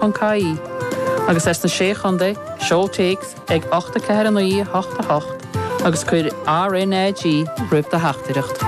Contae, agus as na Sé Chontae, Seol téacs ag 84988 agus cuir RnaG roimh do theachtaireacht.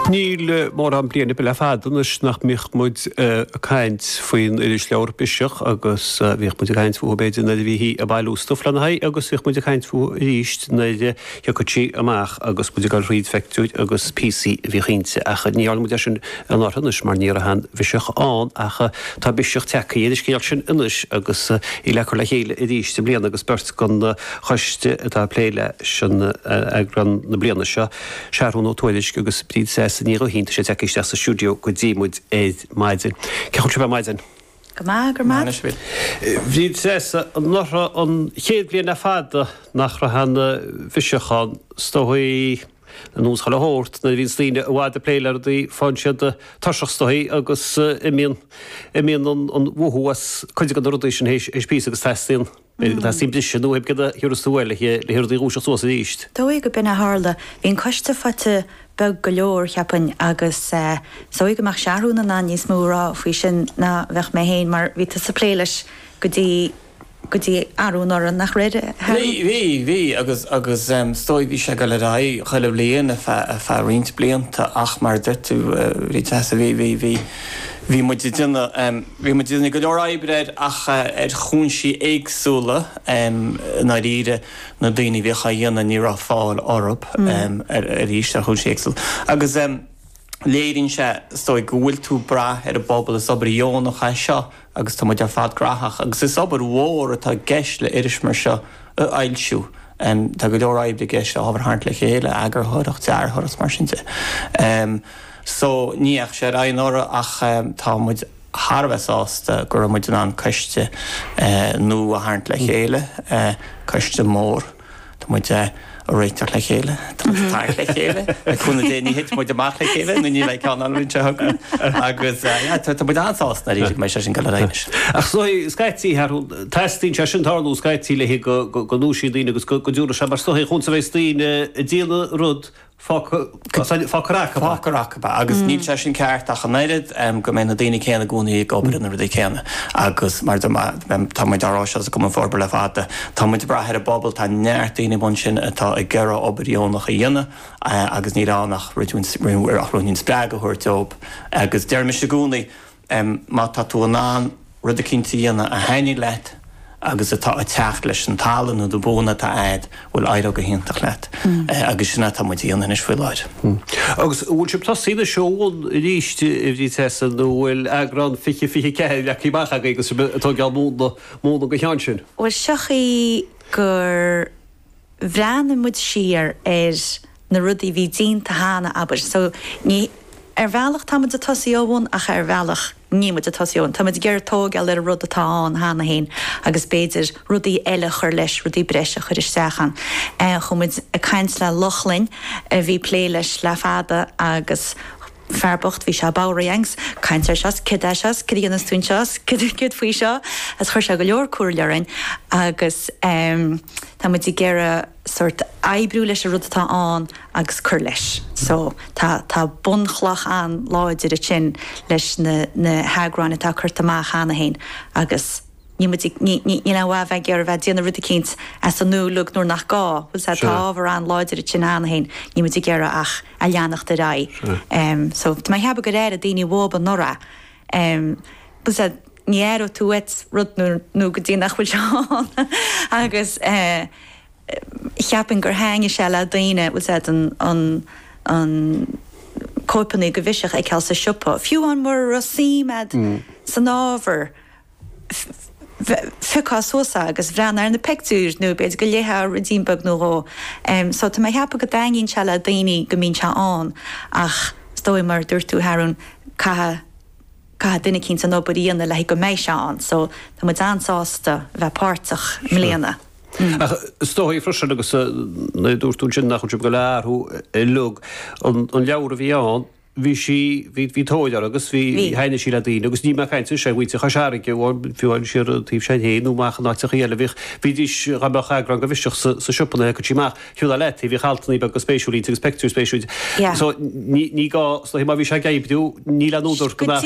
Níl mórán bliain ar bith le fada anois nach mbíodh muid ag caint faoin irisleabhar Biseach agus bhíodh muid ag caint fúithi b'fhéidir nuair a bhítí ag bailiú stuif lena haghaidh agus bhíodh muid ag caint fúithi arís nuair Thiocfadh sí amach agus muid ag goil thríd phictiúir agus píosaí a bhíodh inti, ach ní dhearna muid é sin anuraidh anois mar ní raibh aon Bhiseach ann, ach tá biseach tagthaí ar an scéal sin anois agus í le cur le chéile arís i mbliana agus beirt den choiste atá ag plé leis an eagrán na bliana seo, Seathrún Ó Tuairisc agus Bríd Treasa Ní Ghaoithín, tá siad tagthaí isteach sa stiúideo go dtí muid ar maidin. Cén chaoi a bhfuil sibh ar maidin? Go maith, go maith. Maith sibh. Bríd Treasa, anuraidh, an chéad bhliain le fada nach raibh aon Bhiseach ann. Is dóigh ar nós chuile shórt, nuair a bhíonns daoine i bhfad ag plé le rudaí faigheann siad tuirseach is dóigh agus imíonn, imíonn an mothú as cuid de na rudaí sin théis píosa agus teastaíonn, Tá suim bhreise nó thoimhde de thiús tú eile aici le hiarraidh í a dhúiseacht suas arís. Is dóigh gur b'in a tharla. Bhí an coiste faighte beag go leor, cheapfainn, agus is dóigh go mbeadh Seathrún in ann níos mó a rá faoi sin ná bheadh mé féin, mar bhí tusa ag plé leis go dtí, go dtí arú anuraidh, nach raibh, a Sheathrún? Bhí, bhí, agus, agus is dóigh bhí sé ag dul ar aghaidh chuile bhliain ar feadh, ar feadh roinnt blianta ach mar a deir tú, bhí, bhí, bhí, bhí muid ag déanamh, Bhí muid ag déanamh go leor oibre air ach ar chúinsí éagsúla i ndáiríre, na daoine a bhíodh á dhéanamh ní raibh fáil orthu arís ar chúinsí éagsúla. Agus léiríonn sé is dóigh go bhfuil tú ag brath ar an bpobal, is obair dheonach é seo agus tá muid ar fad graitheach agus is obair mhór atá i gceist le iris mar seo a fhoilsiú. Tá go leor oibre i gceist, ábhar a tharraingt le chéile, eagarthóireacht, dearthóireacht, mar sin de. So, ní dheachaigh sé ar aghaidh anuraidh ach tá muid thar a bheith sásta go raibh muid in ann coiste nua a tharraingt le chéile, coiste mór, tá muid ag réiteach le chéile, tá muid ag tarraingt le chéile, le cúnamh Dé ní thitfidh muid amach le chéile nó ní bheidh ceann ann an bhliain seo chugainn agus tá muid an-sásta nár éirigh mé leis an gCeannaire anois. Ach so, scaití, teastaíonn sé sin tarlú scaití le go ndúisíonn daoine agus go dtiúrfaidh sé mar so, chúns a bheas daoine ag déanamh rud, Fágfar acab é, agus níl sé sin ceart ach an oiread, go mbeidh na daoine céanna i gcónaí ag obair ar na rudaí céanna. Agus mar tá muid á rá seo sa gCumann Forbartha le fada, tá muid ag brath ar an bpobal, tá neart daoine ansin atá ag iarraidh obair dheonach a dhéanamh agus níl ann ach ruainnín spreagadh a thabhairt dóibh. Agus deirimse i gcónaí, em má tá tú in ann rud eicínt a dhéanamh a thaitníonn leat agus atá ag teacht leis an tallann nó do bhuanna atá a'd, bhuel éireoidh go hiontach leat. Eh agus sin atá muid a dhéanamh anois faoi láthair. Hm. Agus an bhfuil sibh tosaithe anois ó bhun arís i i bhfríd seasamh nó bhfuil eagrán fiche, fiche a ceathair leagtha amach agaibh agus sibh atá ag dul múnla, múnla go cheann sin? Bhuel, siocair gur. bhreathnaigh muid siar ar na rudaí a bhí déanta cheana, abair. So, ní, ar bhealach tá muid ag tosaí ó bhun ach ar bhealach níl muid ag tosaí ó bhun. Tá muid ag iarraidh tógáil ar an rud atá ann cheana féin agus b'fhéidir rudaí eile a chur leis, rudaí breise a chur isteach ann. Chuaigh muid ag caint le Lochlainn a bhí ag plé leis le fada agus, fear bocht, bhí sé bodhraithe a'inn ag caint air seo 's céard é seo 's céard a dhéanfas tú anseo 's céard, céard faoi seo agus chuir sé go leor comhairle orainn agus ehm tá muid ag iarraidh sórt oibriú leis an rud atá ann agus cur leis so tá, tá bunchloch an-láidir ansin leis na, na heagráin atá curtha amach cheana féin agus. níl muid ag, ní, ní, níl aon mhaith a bheith ag iarraidh a bheith ag déanamh rud eicínt as an nua uilig nuair nach gá, bhfuil a fhios a'd, tá Sure. ábhar an-láidir ansin cheana féin, níl muid ag iarraidh ach a leanacht ar aghaidh. Sure. Em, so, tá mé ag ceapadh gur airigh daoine uathu anuraidh, em, bhfuil a fhios a'd, ní aireoidh tú uait rud nuair, nó go dtí nach bhfuil sé ann agus, eh, cheapfainn gur thaitnigh sé le daoine, bhfuil a fhios a'd, an, an, an, cóipeanna de Biseach a fheiceáil sa siopa, fiú amháin mura raibh suim a'd san ábhar, phiocfá suas agus bhreathnófá ar na pictiúir nó b'fhéidir go léifeá ruidín beag nó dhó. So tá mé ag ceapadh go dtaitníonn sé le daoine go mbíonn sé ann ach is dóigh mar a dúirt tú Harun caithfidh caithfidh duine eicínt an obair a dhéanamh le haghaidh go mbeidh sé ann so tá muid an-sásta a bheith páirteach i mbliana. Ach is dóigh freisin agus nuair a dúirt tú ansin nach bhfuil sibh ag goil ag athrú uilig, an leabhar a bhí ann, bhí sí, bhí, bhí tóir uirthi agus bhí, Bhí. thaitnigh sí le daoine agus níl mé ag caint anseo ar mhuintir Chois Fharraige amháin, fiú amháin siar taobh s'againn féin nó amach in áiteachaí eile, bhíodh, bhídís, dá mbeadh eagrán de Biseach sa, sa siopa nuair a thiocfadh sí amach, thabharfá leat í, bhíodh altannaí beaga spéisiúil inti agus peictiúir spéisiúil. Yeah. So ní, ní gá, so má bhí sé ag oibriú, níl aon údar go mbeadh aon